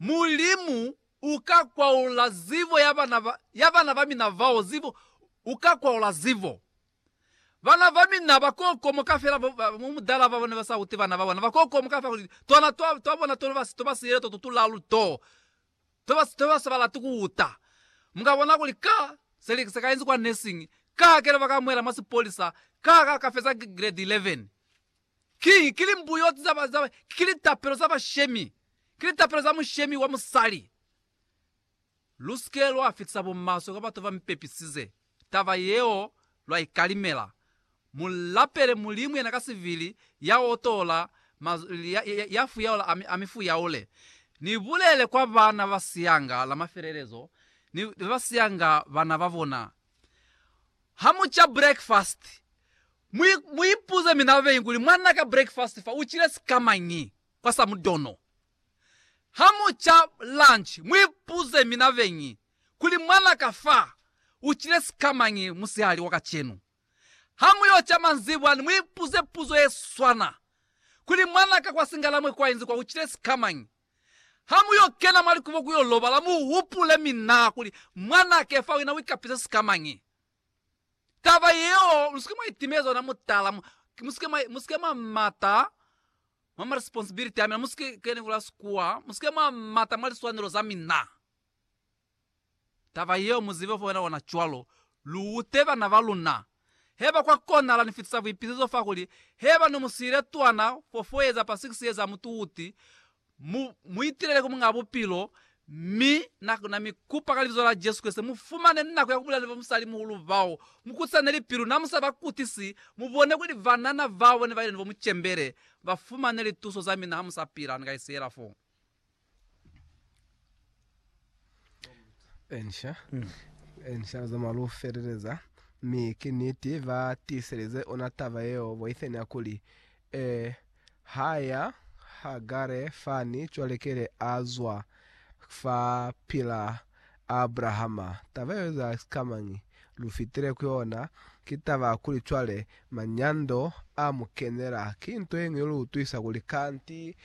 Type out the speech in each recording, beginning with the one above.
Mulimu uka kwaula zibo ya bana ba, ya bana ba mina bao, zibo, uka kwaula zibo. Bana ba mina ba kokomoka fela, bo, ba, mu mudala babo ne ba sa uti bana ba bona, ba kokomoka fela kuli, Tona twa, twa bona to ba, to ba siyele to tutulalu to. To ba, to ba sa ba lati ku uta. Mu ka bona kuli ka, se li, se ka inzi kwa nursing, ka hakele ba ka muela mwa sipolisa, ka, ka, ka feza grade 11. Ki, ki limbuyoti za ba, za, ki litapelo za bashemi, ki litapelo za mushemi wa musali. Lu si ke lwa fitisa bumaswe kwa batu ba mi pepisize taba yeo, lwa ikalimela. Mu lapele Mulimu yena ka sibili, ya otola, ma, ya, ya, ya fuyaula, ami, ami fuyaule. Ni bulele kwa bana ba siyanga la mafelelezo, ni, ni ba siyanga bana ba bona, Ha mu ca breakfast, mu, mu ipuze mina babeñi kuli, Mwan'a ka, breakfast fa u cile sikamañi kwa sa mudono? Ha mu ca lunch, mu ipuze mina babeñi kuli, Mwan'a ka fa u cile sikamañi musihali wa kacenu? Ha mu yo ca manzibwani, mu ipuze puzo ye swana kuli, Mwan'a ka kwa Singalamwe kwa inzi kwa u cile sikamañi? Ha mu yo kena mwa likubo ku yo lobala, mu hupule mi na kuli, Mwan'a Kefa, wena u ikapisa sikamañi? Taba yeo lu si ke mwa itimeza ona mutala, mu, mu si ke mwa, mu si ke mwa mata mwa ma responsibility a mina, mu si ke, ke ni bula Sekua, mu si ke mwa mata mwa liswanelo za mina. Taba yeo mu zibe fo yona cwalo, lu ute bana ba luna. Heba kwa konahala ni fitisa buipisezo fa kuli heba ni mu siile twana fo foeza pa 6 ye za mutuuti, mu, mu itilele ku Muñaa Bupilo, mi na, na mi kupa ka Libizo la Jesu Kreste, mu fumane nako ya ku bulela ni bamusali-muhulu bao. Mu kutisane lipilu, na mu sa ba kutisi, mu bone kuli banana bao ne ba ile ni bo mu cembele, ba fumane lituso za mina ha mu sa pila, ni ka isiela foo. Ensha, ensha za malufeleleza, mi ki niti ba tiiselize ona taba yeo boiteni ya kuli, E ha ya Hagare fani cwale kele a zwa fa pila Abrahama. Taba yeo eza sikamañi? Lu fitile ku yona. Ki taba ya kuli cwale manyando a mu kenela. Ki nto yeñwi ye lu utwisa kuli kanti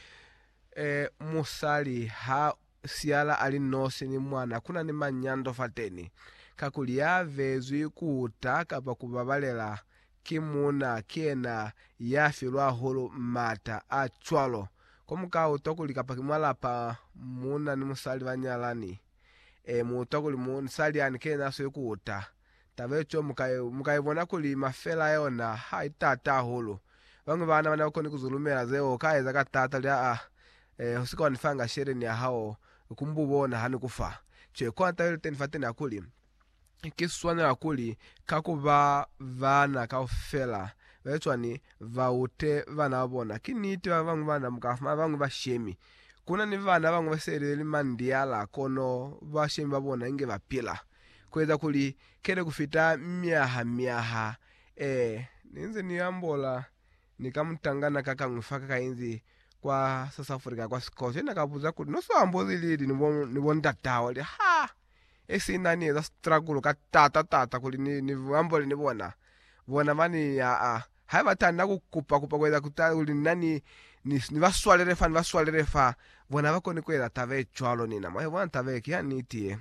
Ee, musali ha siyala a li nosi ni mwana, ku na ni manyando fateni, kakuli ya vezwi ku uta kapa ku babalela ki muuna ki yena ya filwa hahulu m'ata a cwalo. Ko mu ka utwa kuli kapa ki mwa lapa muuna ni musali ba nyalani, ee, mu utwa kuli musali yani ki yena a sweli ku uta. Taba ye cwalo mu ka i bona kuli mafela a yona ha i taata hahulu. Bañwi ba na ba ne ba koni ku zulumela zeo u ka eza ka taata luli aa, Ee, u si ka wa ni fa nga sheleni ya hao ku mbu bona ha ni ku fa. Cwale kona taba iliteni fateni ya kuli, Ki swanela kuli ka ku ba baana kaufela ba cwani ba ute baana ba bona. Ki niti ba bañwi bana mu ka fumana ba bañwi ba shemi. Ku na ni baana ba bañwi ba se li mandiala kono ba shemi ba bona inge ba pila. kueza kuli kele kufita myaha myaha e ninze ni ambola ni ka mutangana kakañwi fa ka inzi kwa South Africa kwa sikolo yena ka buza kuli no so amboli lili ni bo ni bo ndata hao li ha e sina ni eza struggle ka tata tata kuli ni ni ambole ni bona bona bani aa ha ba tanda ku kupa kupa kueza kuta kuli nna ni ni ni ba swalele fa ni ba swalele fa bona ba koni kueza taba e cwalo nina mwa e bona taba e ki ya niti ye.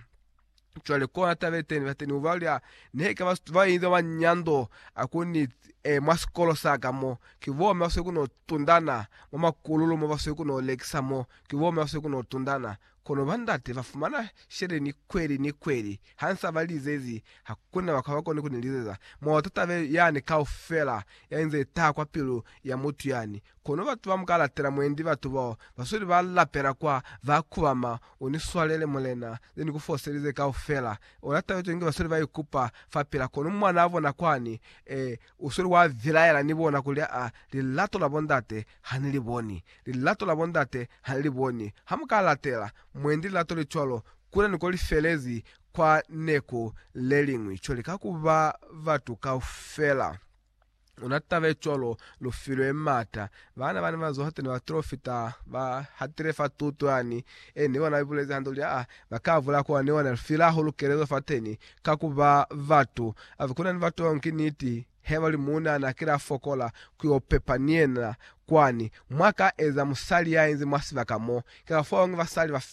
Cwale kona tabe teni bateni uba lya nehe ka bastu ba inza ba nyando akuni e mwa sikolo sa ka mo ki bo me baswe kuno tundana mwa makululu mo baswe kuno lekisa mo ki bo me baswe kuno tundana kono ba ndate ba fumana shele ni kweli ni kweli ha nsa ba lizezi hakuna ba kaba koni kuni lizeza mwa ta tabe yani kaufela ya inze itaha kwa pilu ya mutu yani kono batu ba mu ka latela mwendi batu bao basweli ba lapela kwa ba kubama Uniswalele, Mulena, ze ni ku foselize kaufela. Ona taba yetu inge basweli ba ikupa fa pila, kono mwanaa bona kwani, ee, usweli wa vilaela ni bona kuli, Aa, lilato la bo ndate ha ni li boni. Lilato la bo ndate ha ni li boni. Ha mu ka latela, mwendi, lilato le cwalo, kule ni ko li felezi kwa neku leliñwi, co lika ku ba batu kaufela. Una tabe cwalo, lu filwe m'ata. Baana bani ba zuha teni ba Trofita, ba hatile fa tuto yani, e ni ona ibulezi hande kuli, aa, ba ka bula kwa ni ona, lu file hahulu kelezo fateni, ka ku ba batu. Ave kuna ni batu bao, ki niti, he ba li, Muuna na kila fokola ku yo pepa ni yena kwani, mwa ka eza musali ya inzi mwa sibaka mo. Ki ka fao ngi basali ba fela.